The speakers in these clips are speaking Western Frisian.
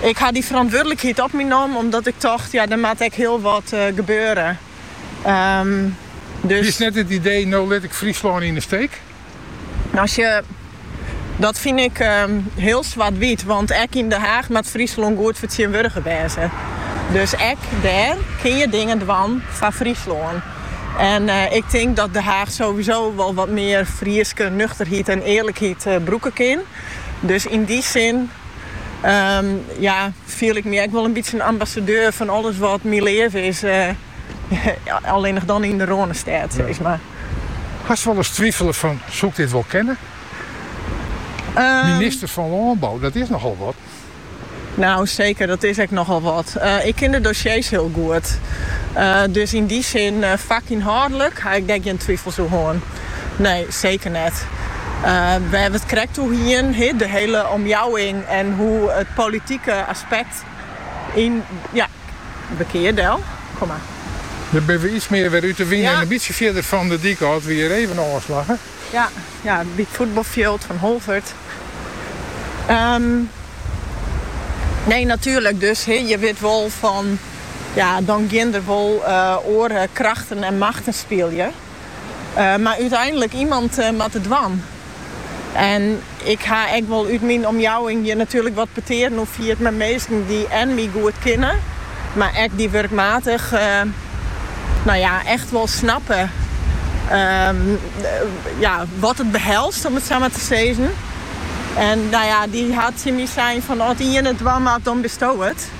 Ik ha dy ferantwurdlikheid op my nommen omdat ik tocht, ja der moat ek hiel wat gebeure. Bist net it idee, no lit ik Fryslân yn 'e steek? As je, dat fyn ik hiel swart-wyt, want ek yn De Haach moat Fryslân goed fertsjinwurdige wêze. Dus ek dêr kin je dingen dwaan foar Fryslân. En ik tink dat De Haach sowieso wol wat mear Fryske nuchterheid en earlikheid brûke kin. Dus yn dy sin ja, fiel ik my ek wol in bytsje in ambassadeur fan alles wat myn leaven is, allinnich dan yn de Rânestêd, sis mar. Hast wolris twifele fan, soe ik dit wol kinne? Minister fan lânbou, dat is nochal wat. Nou, seker, dat is ek nochal wat. Ik kin de dossiers hiel goed. Dus yn dy sin, fakynhâldlik ha ik dêr gjin twifels oer hân. Nee, seker net. Wêr't we it krekt oer hienen, hè, de hiele omjouwing en hoe it politike aspekt yn ja, bekear del. Der binne we iets mear wer út de wyn en in bytsje fierder fan de dyk ôf. It wie hjir even ôfslagge. Ja, ja, by it fuotbalfjild fan Holwert. Ehm. Nee, natuerlik dus. He, je wit wol fan. Ja, dan gean der wol oare krachten en machten spyljen. Mar úteinlik, iemand moat it dwaan. En. Ik ha ek wol út myn omjouwing hjir natuerlik wat petearen oer fierd mei minsken dy't en my goed kinne, mar ek dy wurkmatich no ja, echt wol snappe ja, wat it behelst om it sa mar te sizzen. En no ja, dy ha tsjin my sein fan as it iene it dwaan moat, dan bisto it.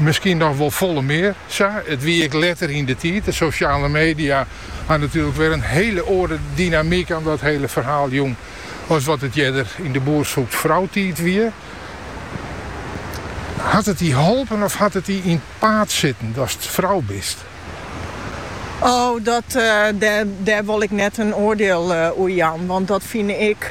Miskien noch wol folle mear sa. It wie ek letter yn de tiid. De sosjale media ha natuerlik wer in hiele oare dynamyk oan dat hiele ferhaal jûn as wat it earder yn de boer soekt frou tiid wie. Hat it dy holpen of hat it dy yn 't paad sitten datst frou bist? O, dat, dêr wol ik net in oardiel oer jaan, want dat fine ik.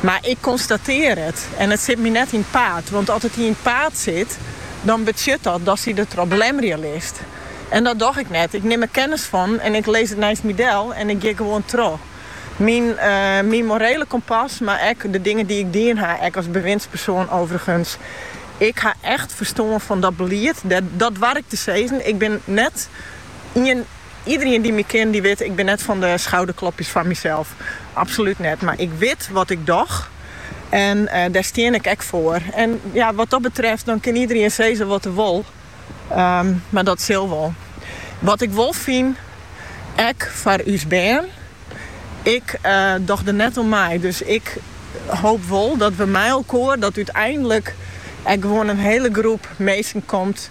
Mar ik konstatear it en it sit my net yn 't paad. Want as it dy yn 't paad sit, dan betsjut dat datst dy der troch belemmere list. En dat doch ik net. Ik nim der kennis fan en ik lizz it neist my del en ik gean gewoan troch. Myn myn morele kompas, mar ek de dingen dy't ik dien ha, ek as bewindspersoan overigens. Ik ha echt ferstân fan dat belied. Dat doar ik te sizzen. Ik bin net ien. Iedereen dy't my kin, dy't wit, ik bin net fan de schouderklopjes foar mysels. Absolút net. Mar ik wit wat ik doch. En eh, dêr stean ik ek foar. En ja, wat dat betreft, dan kin iedereen sizze wat er wol. Ehm, mar dat sil wol. Wat ik wol fyn, ek foar ús bern, ik eh, doch der net oan mei. Dus ik hoop wol dat we mei elkoar, dat úteinlik ek gewoan in hele groep mensen komt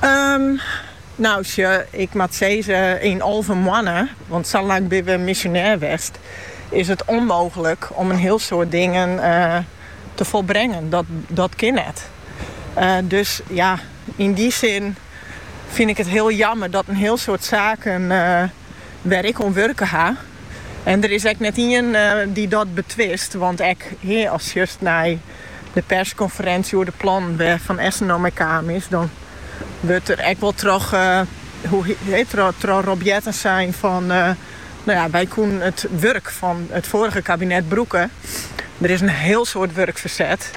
Ehm, nou sjo, ik moat sizze yn alve moanne, want sa lang binne we misjonêr west, is it ûnmooglik om in hiel soad dingen te folbrengen. Dat, dat kin net. Dus ja, yn dy sin fyn ik it hiel jammer dat in hiel soad saken wêr ik oan wurke ha, en der is ek net ien dy't dat betwist, want ek hear ast sjochst nei. de perskonferensje oer de plannen wêr't Van Essen no mei kaam is, dan wurdt der ek wol troch troch Rob Jetten sein fan no ja, wy koenen it wurk fan it foarige kabinet brûke. Der is in hiel soad wurk ferset,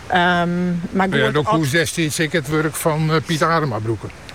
mar goed. Do koest destiids ek it wurk fan Piet Adema brûke.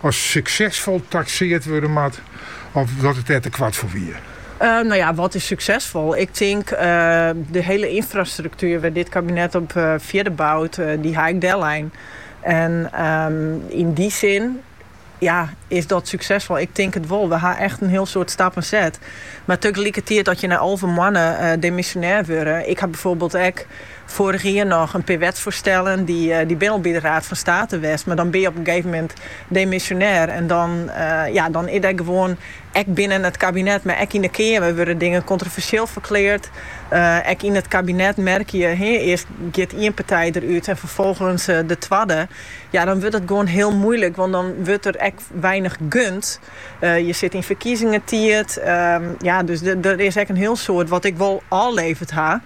as suksesfol takseard wurde moat of dat it dêr te koart foar wie? Nou ja, wat is suksesfol? Ik tink de hiele ynfrastruktuer wêr't dit kabinet op fierder bout, dy ha ik dellein. En yn dy sin ja, is dat suksesfol? Ik tink it wol. We ha echt in hiel soad stappen set. Mar tegelikertiid, as je nei alve moanne demisjonêr wurde, ik ha byfoarbyld ek Foarich jier noch in pear wetsfoarstellen, dy binne al by de Raad fan State west, mar dan bin je op in gegeven moment demisjonêr en dan is dêr gewoan, ek binnen it kabinet, mar ek yn de Keamer wurde dingen kontroversjeel ferkleard. Ek yn it kabinet merke je, earst giet ien partij derút en ferfolgens de twadde. Ja, dan wurdt it gewoan hiel moeilik, want dan wurdt der ek weinich gund. Je sit yn ferkiezingentiid, ja, dus der is ek in hiel soad wat ik wol ôfleverd ha.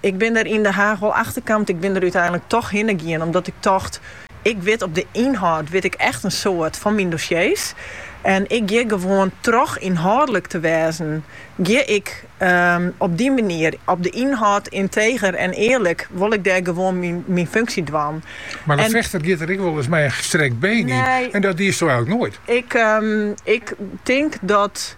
Ik bin der yn De Haach wol achter kamd, ik bin der úteinlik toch hinne gien omdat ik tocht, ik wit op de ynhâld wit ik echt in soad fan myn dossiers en ik gean gewoan troch ynhâldlik te wêzen gean ik op dy manier op de ynhâld ynteger en earlik wol ik dêr gewoan myn funksje dwaan. Mar in fechter giet der ek wolris mei in gestrekt been yn en dat diesto eigenlik noait. Ik tink dat.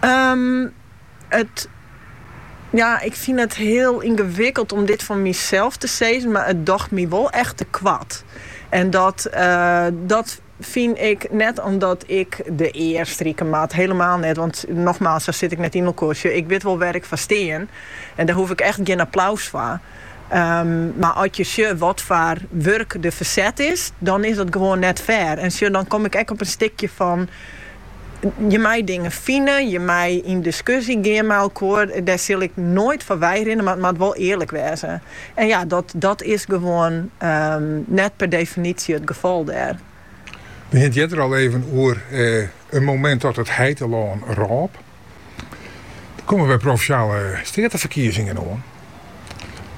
Ehm it ja ik fyn it heel yngewikkeld om dit fan mysels te sizzen, mar it docht my wol echt te koart. En dat eh dat fyn ik net omdat ik de ear strike moat, hielendal net, want nogmaals sa sit ik net ynelkoar. Sjoch ik wit wol wêr ik foar stean en dêr hoef ik echt gjin applaus foar. Ehm mar at je sjogge wat foar wurk der ferset is dan is dat gewoan net fair en sjoch dan kom ik ek op in stikje fan, Je mei dingen fine, je mei yn diskusje gean mei elkoar. Dêr sil ik noait foar weirinne, mar it moat wol earlik wêze. En ja, dat, dat is gewoan ehm, net per definitie it gefal dêr. We hiene it earder al even oer eh, in momint dat it heitelân rôp. Der komme wer provinsjale steateferkiezingen oan.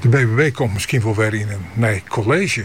De BBB komt miskien wol wer yn in nij college.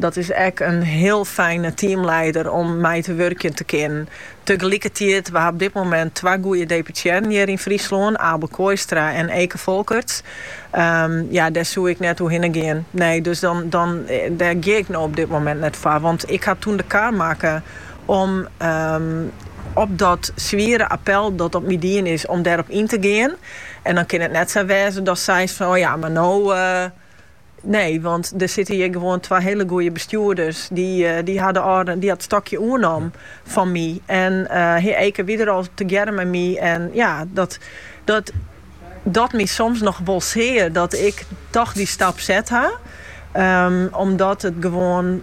Dat is ek in hiel fijne teamleider om mei te wurkjen te kinnen. Tegelikkertiid, we ha op dit moment twa goeie deputearren hjir yn Fryslân, Abel Kooistra en Eke Folkerts. Ja, dêr soe ik net oer hinne gean. Nee, dus dan, dan, dêr gean ik no op dit moment net foar. Want ik ha toen de kar makke om op dat swiere appel dat op my dien is, om dêrop yn te gean. En dan kin it net sa wêze datst seist fan, o ja, mar no, Nee, want der sitte hjir gewoan twa hiele goeie bestjoerders. Dy, eh, Abel dy hat it stokje oernommen fan my. En eh, Eke wie der al tegearre mei my. En ja, dat, dat docht my soms noch wol sear dat ik toch dy stap set ha. Ehm, omdat it gewoan.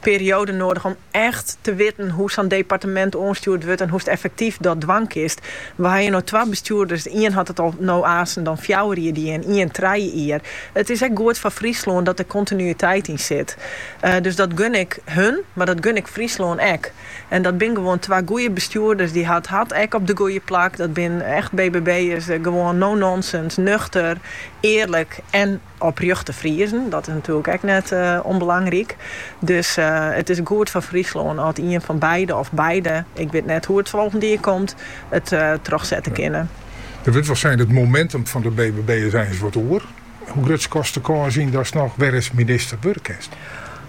periode noadich om echt te witten hoe sa'n departemint oanstjoerd wurdt en hoe'tst effektyf dat dwaan kinst. We hawwe hjir no twa bestjoerders, de ien hat it al no aansen dan fjouwer jier dien, ien trije jier. It is ek goed foar Fryslân dat der kontinuïteit yn sit. Dus dat gun ik hun, mar dat gun ik Fryslân ek. En dat binne gewoan twa goeie bestjoerders, dy't it hart ek op de goeie plak. Dat binne echt BBB'ers, gewoan no-nonsense, nuchter, earlik en. Oprjochte Friezen, dat is natuerlik ek net ûnbelangryk. Dus it is goed foar Fryslân at ien fan beide of beide, ik wit net hoe't it folgend jier komt, it trochsette kinne. Der wurdt wol sein dat it momentum fan de BBB is eins wat oer. Hoe grut skatsto de kâns yn datst noch werris minister wurde kinst?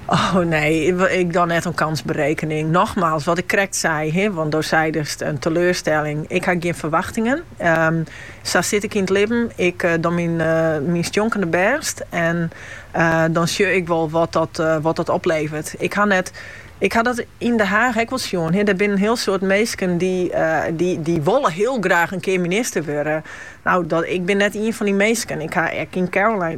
Oh nee, ik doan net oan kansberekening. Nochmaals, wat ik krekt sei, want do seidest in teleurstelling, ik ha gjin ferwachtingen. Sa sit ik yn it libben, ik doan myn stjonkende bêst en dan sjoch ik wol wat dat, wat dat opleveret. Ik ha net, ik ha dat yn De Haach ek wol sjoen, der binne in hiel soad minsken dy't wolle hiel graach in kear minister wurde. Nou, ik bin net ien fan dy minsken. Ik ha ek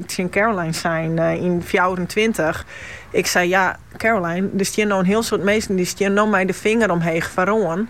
tsjin Caroline sein yn fjouwerentweintich, ik sei ja Caroline, der stean no in hiel soad minsken dy't stean no mei de finger omheech foaroan,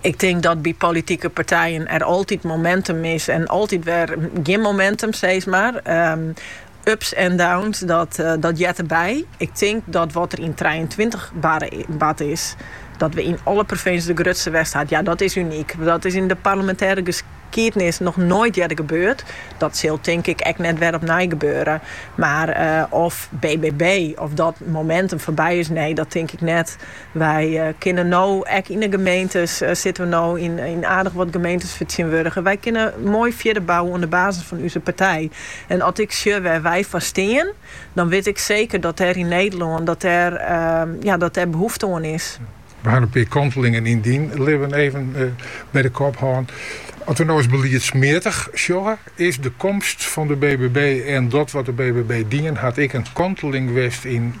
Ik tink dat by politike partijen der altyd momentum is en altyd wer gjin momentum, sees mar. Ehm, ups en downs, dat, eh, dat heart derby. Ik tink dat wat der yn trijeentweintich bard is, dat we yn alle provinsjes de grutste wurden binne, ja, dat is unyk. Dat is yn de parlemintêre geskiednis noch noait earder gebeurd. Dat sil, tink ik, ek net wer opnij gebeure. Mar eh, of BBB, of dat momentum foarby is, nee, dat tink ik net. Wy kinne no ek yn de gemeentes, sitte we no yn aardich wat gemeentes fertsjinwurdige, wy kinne moai fierder bouwe oan de basis fan úze partij. En as ik sjoch wêr wy foar stean, dan wit ik seker dat dêr yn Nederlân dat dêr dat dêr behoefte oan is. We ha 'n pear kantelingen yn dyn libben even by de kop hân. As we no ris beliedsmeatich sjogge, is de komst fan de BBB en dat wat de BBB dien hat ek in kanteling west yn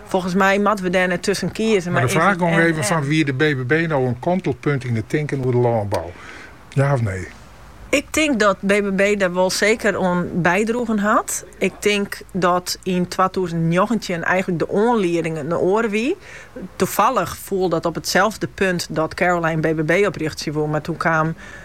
Folgens my moatte we dêr tusken kieze. Mar de fraach even fan, wie de BBB no in kantelpunt yn it tinken oer de lânbou? Ja of nee? Ik tink dat BBB dêr wol seker oan bydroegen hat. Ik tink dat yn twatûzen njoggentjin eigenlik de oanlieding in oare wie. Toefallich foel dat op itselde punt dat Caroline BBB oprjochtsje woe, mar toen kaam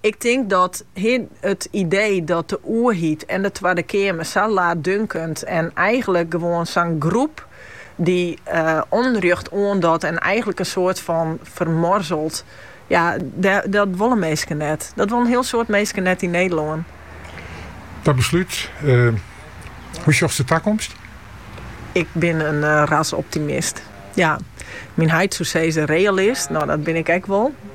Ik tink dat hiel it idee dat de oerheid en de Twadde Keamer sa laatdunkend en eigenlik gewoan sa'n groep dy onrjocht oandocht en eigenlik in soart fan fermoarselet, ja, dat wolle minsken net. Dat wolle in hiel soad minsken net yn Nederlân. Dat beslút, hoe sjochst de takomst? Ik bin in rasoptimist. Ja, myn heit soe sizze realist, no dat bin ik ek wol.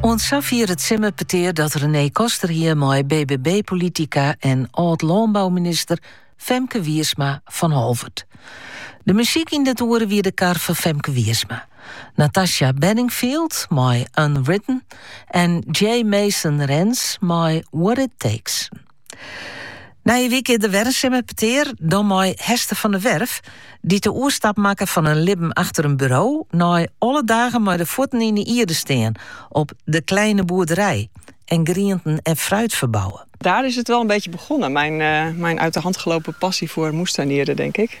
Oant safier it simmerpetear dat René Koster hie mei BBB-politica en âld-lânbouminister Femke Wiersma fan Holwert. De muzyk yn dit oere wie de kar fan Femke Wiersma. Natasha Bedingfield mei Unwritten en Jay Mason Rens mei What It Takes. Nije wike der wer in simmerpetear dan mei Hester van der Werf, dy't de oerstap makke fan in libben achter in buro nei alle dagen mei de fuotten yn de ierde stean op De Kleine Boerderij en grienten en fruit ferbouwe. Daar is het wel een beetje begonnen, mijn uit de hand gelopen passie voor moestuinieren denk ik.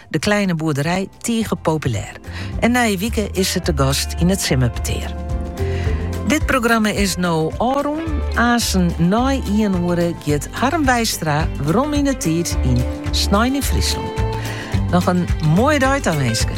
De Kleine Boerderij tige populêr en nije wike is se te gast yn it simmerpetear. Dit programma is no ôfrûn. Aansen nei ien oere giet Harm Wijstra werom yn 'e tiid yn Snein yn Fryslân. Noch in moaie dei tawinske.